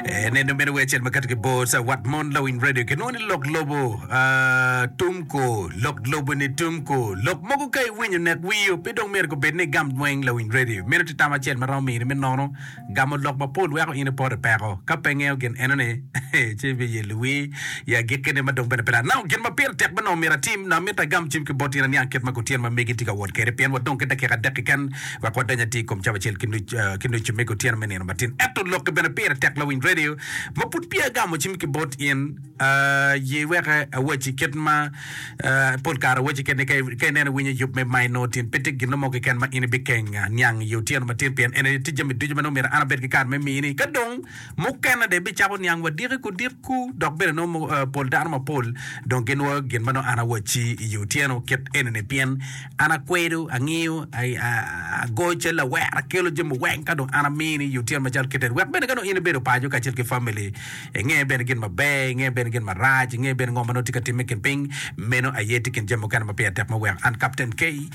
Eh, neno meno wecel makato ki bor sa wat mon lawiny radio kinongo ni lok lobo ah, tumko lok lobo ni tumko lok mogo ka iwinyo nek wiyo pe dong myero gubed ni igam dweng lawiny radio meno tye tam acel ma romo mini me nono gamo lok mapol weko in ipoto i peko ka pe ingeyo gin enoni ci ibiye luwi ya agikkine ma dong bene pe lat nongo gin ma pire tek bene onongo myero atim nongo amito agam cim ki bot in aniang kit ma kutyeno ma megi tye ka wot kwede pien wadong ki dakika adek keken wek wadeny atir i kom cawa acel ki nucu me kutyeno me nino matin. Ento lokke bene pire tek lawiny redio ma pud peya agamo cim ki bot in. Ye weke awacci kit ma pol kare awacci kit ni ka ineno iwinyo yub me mayi nongo tin pe tye gin mo keken ma in ibikeng niang i otyeno matin pien en aye tye jami ducu ma nongo myero an abed ki kare me miyini. Ka dong mukene dong ibicako niang wa diki ku dit ku dok bene nongo pol dano mapol dong ginwoyo gin ma nongo an awacci i otyeno kit eni-ni pien An akwedo, angiyo, agoyo cal lawera, akelo jami weng ka dong an amini i otyeno macalo kite-ni, wek bene ka dong in ibedo paco kacel ki famili, inge bene gin maber, inge bene gin marac, inge bene ngo ma nongo tye ka timme i kin piny. Meno aye tye i kin jami mukene ma pire tek me weko. An Captain Kay,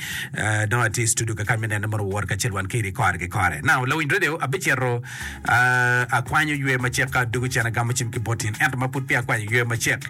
dong atye i studio kakany me nene mono wowot kacel wan kiri kore ki kore. Now, lawiny radio abicito akwanyo ywe macek ka adwogo cen agamo cim ki bot in, ento ma pud peya akwanyo ywe macek,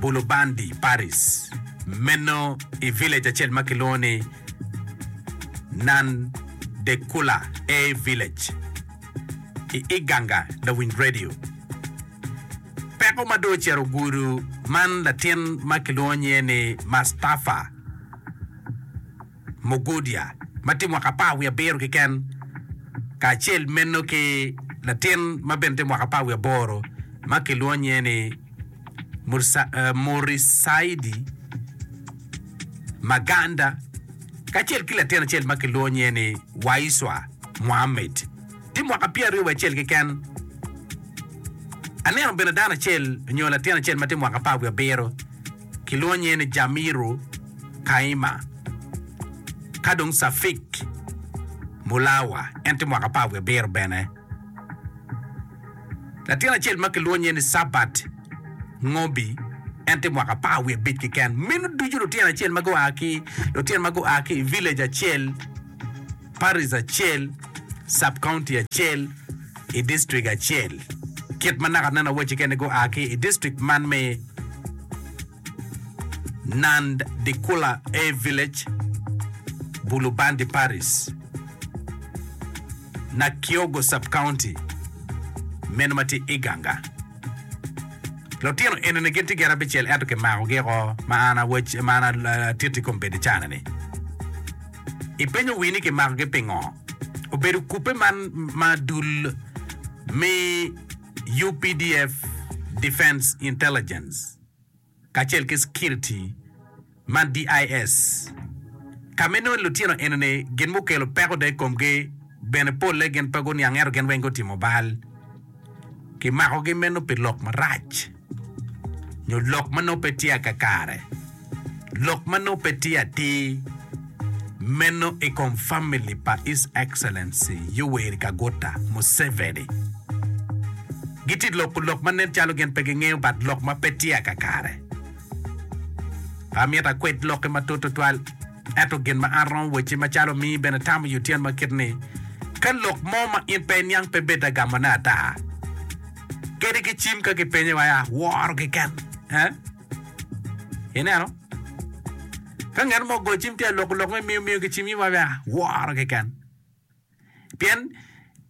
Bulubandi Paris, meno i village acel ma kilwongo ni Nan de Kula A Village i Iganga lawiny radio. Peko ma dong ocito gudo man latin ma kilwongo nyinge ni Mastafa. Mogodia ma tye mwaka apar wiye abiro keken, kacel meno ki latin ma bene tye mwaka apar wiye aboro ma kilwongo nyinge ni Murisaidi Maganda kacel ki latin acel ma kilwongo nyinge ni Waiswa Muhammed tye mwaka pyera aryo wiye acel keken. Aneno bene dano acel nyo latin acel ma tye mwaka apar wiye abiro. kilwonye ni Jamiru Kaima, ka dong Safik Mulawa en tye mwaka apar wiye abiro bene. Latin acel ma kilwonye ni Sabat Ngobi en tye mwaka apar wiye abic keken. Meno ducu lutino acel ma gua ki lutino ma gua ki i village acel. Parish acel, Sub County acel, i District acel. Kit ma naka aneno wacci kene gua ki i District man me Nand Dikula A Village, Bulubandi Parish, Nakiogo Sub County, meno ma tye Iganga. Lutino enini gin tye gin abicel ento kimakogi oko ma an awac ma an atiti i kom bedo icanani. Ipenyo wi ni kimakogi pingo? Obedo kubbe man ma dul me updf Defence Intelligence kacel ki Security man DIS ka me nongo lutino enoni gin mukelo peko dong ikomgi bene polle gin pe guniang ento gin weng gutimo bal. Kimakogi meno pi lok marac. nyo lok ma nongo pe tye a kakare, lok ma nongo pe tye atir meno i kom famili pa His Excellency Yoweri Kaguta Museveni. Gitye loko lok ma nen calo gin pe gingeyo but lok ma pe tye a kakare. Pe amito akwed lokke matut tutwal ento gin ma an romo wacci macalo omi bene tamo yo tyen ma kit ni ka lok mo ma in pe iniang pe bed agamone ata. kadi ki cim ka kipenye wa ya woro keken eh ineno ka ngat mo go cim tye lok lok me miyo miyo ki cim in wa ya woro keken pien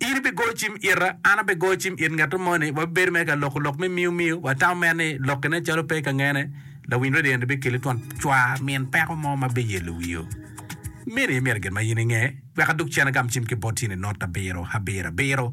in ibi go cim ita an abi go cim it ngat mo ni wa bedo me ka lok lok me miyo miyo wa tam mer ni lok kine calo pe ka ngene lawiny radio ni bi kele twon cwa min peko mo ma bi yelo wiyo mini myero gin ma in inge wek aduk cene gam cim ki bot in i not abiro abiro abiro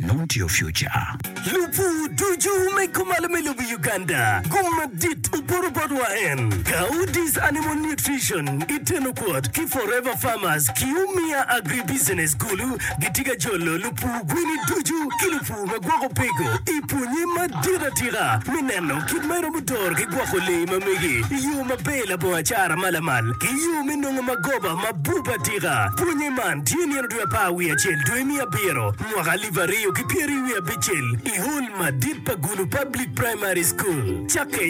Nongo tye future. Lupu ducu me kumalo me lobo Uganda gum madit oporo bot wa en Gaudis Animal Nutrition i teno kwot ki Forever Farmers ki Umia Agri Business kulu gitye ka jolo lupu gweni ducu ki lupu ma gwoko peko i pwonye madit atika me neno kit ma iromo doro ki gwoko lee ma mege i yo maber labongo acara ma lamal ki yo me nongo magoba mabup atika pwonye man tye nino dwe apar wiye acel, dwe me abiro, mwaka alip aryo ki pyeraryo wiye abicel, i hol madit pa Gulu Public Primary School, cakke.